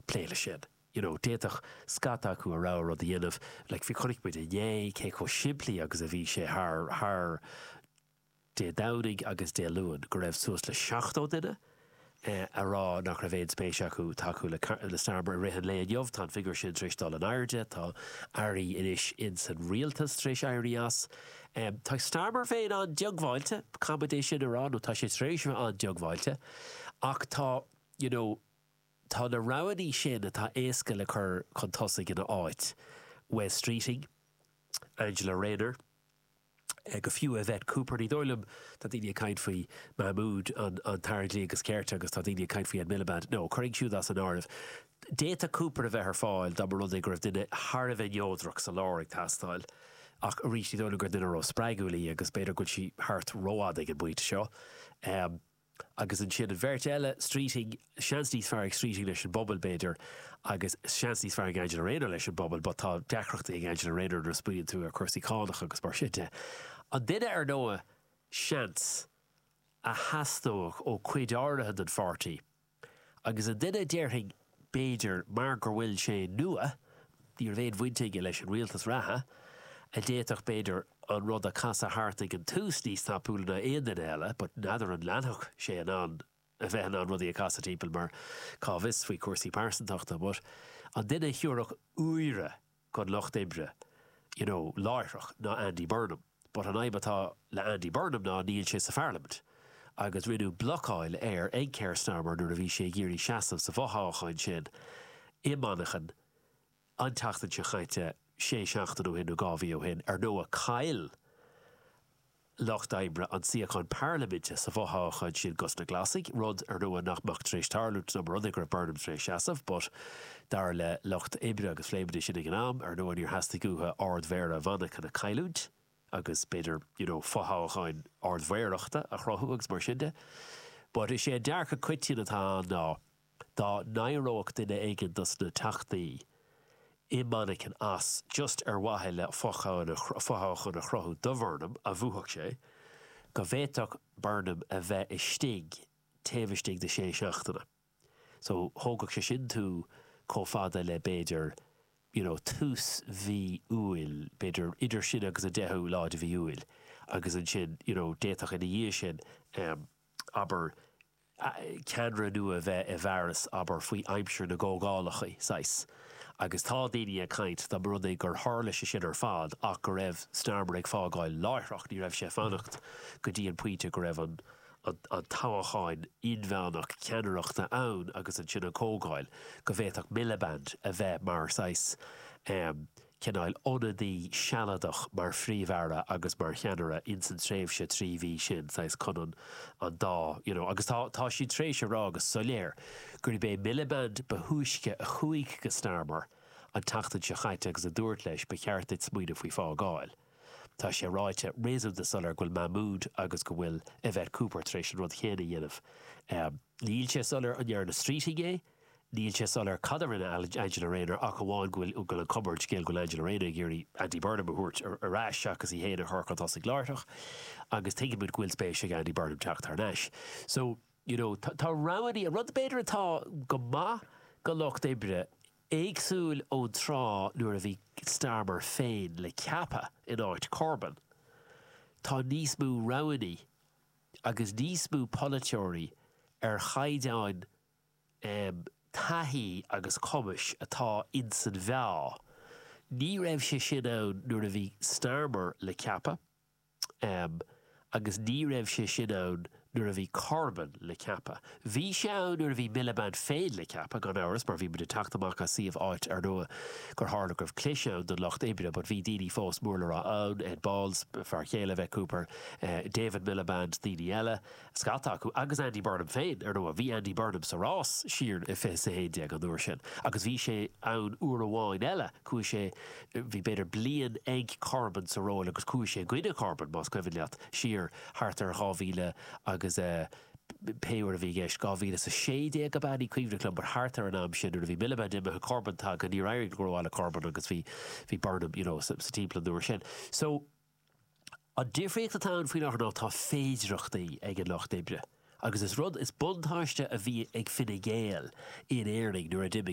plé le sin. You know, d'fhéadfadh scata acu a rogha rud a dhéanamh, like bhí, chonaic muid inné cé chomh simplí agus a bhí sé thar, thar Dé Domhnaigh agus Dé Luain go raibh suas le 70 duine eh a rá nach raibh aon spéis acu tacú le, le Starmer i rith an lae. Inniu tá an figiúr sin tar éis dul in airde, tá Airí anois in san Rialtas tar éis éirí as. Em, tá Starmer féin an-diongbháilte, caithfidh muid é sin a rá, nó tá sé tar éis a bheith an-diongbháilte ach tá, you know, Tá na roghannaí sin atá éasca le cur chun tosaigh ina áit, Wes Streeting, Angela Rayner, go fiú Yvette Cooper. Ní dóigh liom, tá daoine ag caint faoi Mahmood an tAire Dlí agus Cirt agus tá daoine ag caint faoi Ed Miliband. No, cuir iad siúd as an áireamh. D'fhéadfadh Cooper a bheith ar fáil dá mba rud é go raibh duine thar a bheith neodrach sa lár ag teastáil ach arís ní dóigh liom gur duine ró-spreagúil í agus b'fhéidir go bhfuil sí thart rófhada ag an bpointe seo. Agus ansin an bheirt eile, Streeting, seans níos fearr ag Streeting leis an bpobal, b'fhéidir, agus seans níos fearr ag Angela Rayner leis an bpobal, but tá deacrachtaí ag Angela Rayner nuair a smaoiníonn tú ar cúrsaí cánach agus mar sin de. An duine ar ndóigh, seans, a theastódh ó cuid áirithe den pháirtí, agus an duine a déarfainn, B'fhéidir mar gur bhfuil sé nua, ní raibh aon bhaint aige leis an rialtas reatha, a d'fhéadfadh b'fhéidir an rud a casadh thart ag an tús níos tapúla ná aon duine eile but n'fheadar an leanfadh sé in ann a bheith in ann rudaí a casadh timpeall mar cá bhfios faoi chúrsaí pearsantachta but an duine a thiúrfadh úire don Lucht Oibre, you know, láithreach ná Andy Burnham. But an fhadhb atá le Andy Burnham ná níl sé sa Pharlaimint. Agus rinneadh blocáil air ag Keir Starmer nuair a bhí sé ag iarraidh seasamh sa bhfothoghchán sin i Manchain an tseachtain seo chaite sé seachtain ó shin nó dhá mhí ó shin. Ar ndóigh, chaill lucht oibre an suíochán Parlaiminte sa bhfothoghchán sin dos na Glasaigh, rud ar ndóigh nach mbeadh tar éis tarlú dá mba rud é go raibh Burnham tar éis seasamh, but dar le lucht oibre agus phléigh muid é sin ag an am, ar ndóigh níor theastaigh uathu Ard-Mhéara Mhanchain a chailliúint agus b'fhéidir, you know, fothoghchán Ard-Mhéarachta a chruthú agus mar sin de. But is é an dearcadh coitinn atá ann ná Dá n-éireodh duine éigin dos na Teachtaí i Manchain as, just ar mhaithe le fothoghchán a chruthú do Bhurnham, go mbuafadh sé, go bhféadfadh Burnham a bheith istigh taobh istigh de shé seachtaine. So, thógfadh sé sin tú comh fada le, b'fhéidir, you know, tús mhí Iúil, b'fhéidir idir sin agus an deichiú lá de mhí Iúil. Agus ansin, you know, d'fhéadfadh ina dhiaidh sin, abair, ceannaire nua a bheith i bhfearas abair faoi aimsir na gcomhdhálacha saghas. Agus tá daoine ag caint dá mba rud é gur tharla sé sin ar fad ach go raibh Starmer ag fágáil láithreach, ní raibh sé ag fanacht go dtí an pointe go raibh an toghachán inmheánach ceannaireachta ann agus ansin an comhdháil, go bhféadfadh Miliband a bheith mar saghas. cineál ionadaí sealadach mar Phríomh-Aire agus mar cheannaire ins an tréimhse trí mhí sin, saghas chun an an dá you know. Agus tá tá siad tar éis a rá go soiléir gurb é Miliband ba thúisce a chuaigh go Starmer an tseachtain seo chaite agus a dúirt leis ba cheart duit smaoineamh faoi fágáil. Tá sé ráite réasúnta soiléir go bhfuil Mahmood agus go bhfuil Yvette Cooper tar éis an rud chéanna a dhéanamh. Níl sé soiléir an ndearna Streeting é. Níl sé soiléir cad a rinne Angela Rayner ach amháin go bhfuil go bhfuil an cuma ar an scéal go bhfuil Angela Rayner ag iarraidh Andy Burnham a thabhairt ar ais seachas í féin a chur chun tosaigh láithreach agus tuigimid go bhfuil spéis ag Andy Burnham teacht thar n-ais. So, you know, tá roghannaí, an rud b'fhéidir atá go maith go Lucht Oibre, éagsúil ón tráth nuair a bhí Starmer féin le ceapadh in áit Corbyn, tá níos mó roghannaí. agus níos mó polaiteoirí ar chaighdeán taithí agus cumais atá ins an mheá. Ní raibh sé sin ann nuair a bhí Starmer le ceapadh agus ní raibh sé sin ann nuair a bhí Corbyn le ceapadh. Bhí sé ann nuair a bhí Miliband féin le ceapadh, gan amhras, mar bhí muid ag teacht amach as suíomh áit ar ndóigh gur tharla go raibh clis ann don Lucht Oibre but bhí daoine fós mór le rá ann, Ed Balls, fear chéile Yvette Cooper, David Miliband, daoine eile, scata acu, agus Andy Burnham féin. Ar ndóigh, bhí Andy Burnham sa rás siar i 20 is 11 an uair sin agus bhí sé ann uair amháin eile, chuaigh sé, bhí b'fhéidir bliain ag Corbyn sa ról agus chuaigh sé i gcoinne Corbyn, más cuimhin leat, siar thart ar 2000 agus eh. pé uair a bhí i gceist, 2016 ab ea, ní cuimhin liom, but thart ar an am sin nuair a bhí Miliband imithe, Corbyn tagtha, níor éirigh go rómhaith le Corbyn agus bhí, bhí Burnham, you know, sa timpeall an uair sin. So, an difríocht atá ann faoi láthair ná tá féidireachtaí ag an Lucht Oibre agus is rud, is buntáiste a bhí ag Fine Gael in Éirinn nuair a d'imigh,